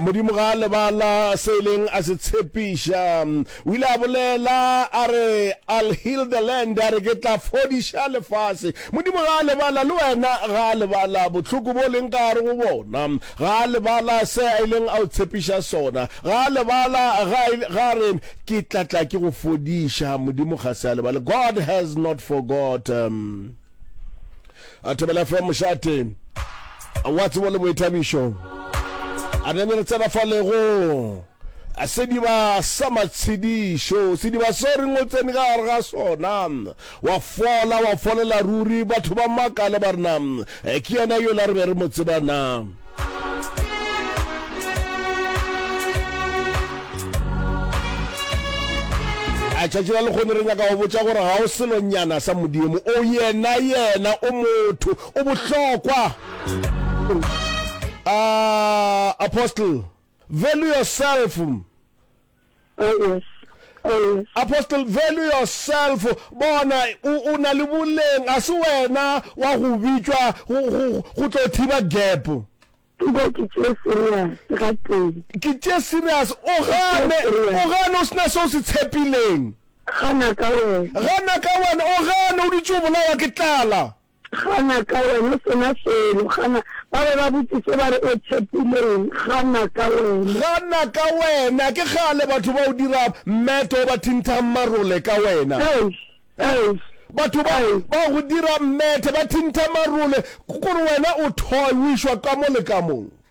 modimo ga a lebala se e leng a se tshepiša o ile a bolela a re i'll heal the land a re ke tla fodiša lefase modimo ga a lebala le wena ga a lebala bohloko bo leng ka gare go bona ga a lebala se a ileng a o tshepiša sona ga a lebala ga re ke tlatla ke go fodiša modimo ga se a lebala god has not forgotten a thobela fe mošate wa tsebo le boithabišo a re re tsena fa lego a sediba sa matshedišo sediba so re ngotsene ka gare ga sona wa fola wa folela ruri batho ba makale ba rena eh, ke yena yola re be re mo tsebana a tšatši la lekgone re nyaka go botša gore ga o selonyana sa modimo o yena yena o motho o bohlokwa uh, apostle value yourself Oh yes. Oh yes. Apostle value yourself bona o o na le boleng a se wena wa go bitšwa go go go tlo thiba gap Dilo ke tše serious ga teng. ke tše serious o gane o gane o sena se o se tshepileng Gana ka wena. gana ka wena o gane o dutše o bolawa ke tlala Gana ka wena o se na selo. Gana. Ba be ba botšiše ba re, O tšhepileng? Gana ka wena. Gana ka wena. Ke kgale batho ba o dira mmeto, ba thintha marole ka wena. Eish! Eish! Batho ba, Eish! ba go dira mmete, ba thintha marole, gore wena o thoy, o išwa kamo le kamong.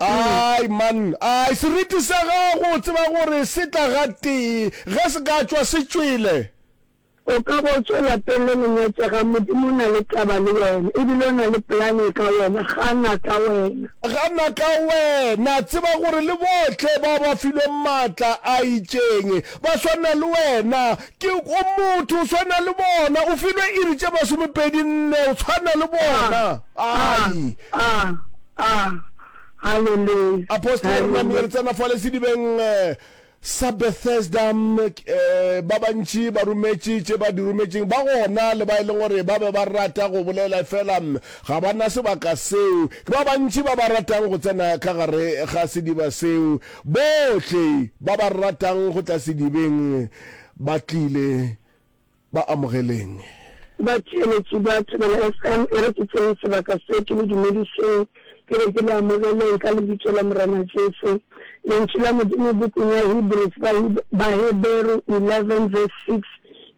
ai man ai seriti sa gago tseba gore se tla ga tee ge se ka tšwa se tšwele o ka bo tswela pele go nyetsega modimo o na le taba le wena ebile o na le polane ka wena gana ka wena gana ka wena tseba gore le bohle ba ba filweng maatla a itšeng ba swana le wena Ke o motho, o swana le bona. O filwe iri tše masomepedi nne, o swana le bona. Ai! Apostle, re name re tsena fale sedibeng sa Bethesda. Ba bantši ba rometše tše ba di rometšeng, ba gona le ba e leng gore ba be ba rata go bolela efela ga ba na sebaka seo. Ke ba bantši ba ba ratang go tsena ka gare ga sediba seo. Bohle ba ba ratang go tla sedibeng, Ba tlile, ba amogeleng. Batheeletši ba Thobela FM e re ke tsene sebaka se ke le dumedišeng, ke re ke le amogeleng ka Lebitso la Morena Jesu. Lentšu la Modimo bukung ya Hebrews, Baheberu 11 verse 6,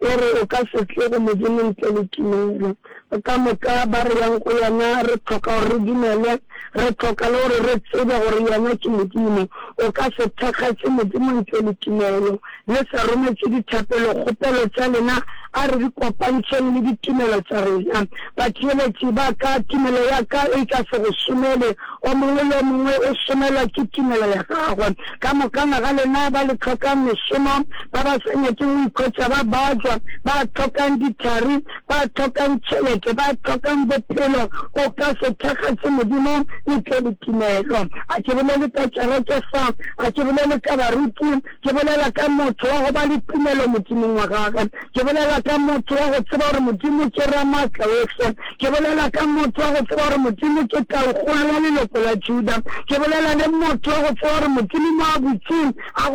e re, O ka se tle go Modimo ntle le tumelo. Ka moka ba re yang go yena, re hloka gore re dumele, re hloka le gore re tsebe gore yena ke Modimo. O ka se thakgatše Modimo ntle le tumelo. Le sa rometše dithapelo, kgopelo tša lena, a re di kopantšheng le ditumelo tša rena. Batheeletši ba ka, tumelo ya ka e ka se go šomele. O mongwe le o mongwe o šomelwa ke tumelo ya gagwe. Ka mokana ga lena ba le hlokang mešomo, ba ba sa nyakego go ikhwetša ba bajwa, ba hlokang dithari, ba hlokang tšhelete, ba hlokang bophelo, o ka se thakgatše Modimo ntle le tumelo. A ke bolele ka kereke fa, a ke bolele ka baruti, ke bolela ka motho wa go ba le tumelo Modimong wa gagwe, ke bolela ka motho wa go tseba gore Modimo ke Ramaatlaohle, ke bolela ka motho wa go tseba gore Modimo ke Taukgolo ya leloko la Juda, ke bolela le motho wa go tseba gore Modimo Moabutse a go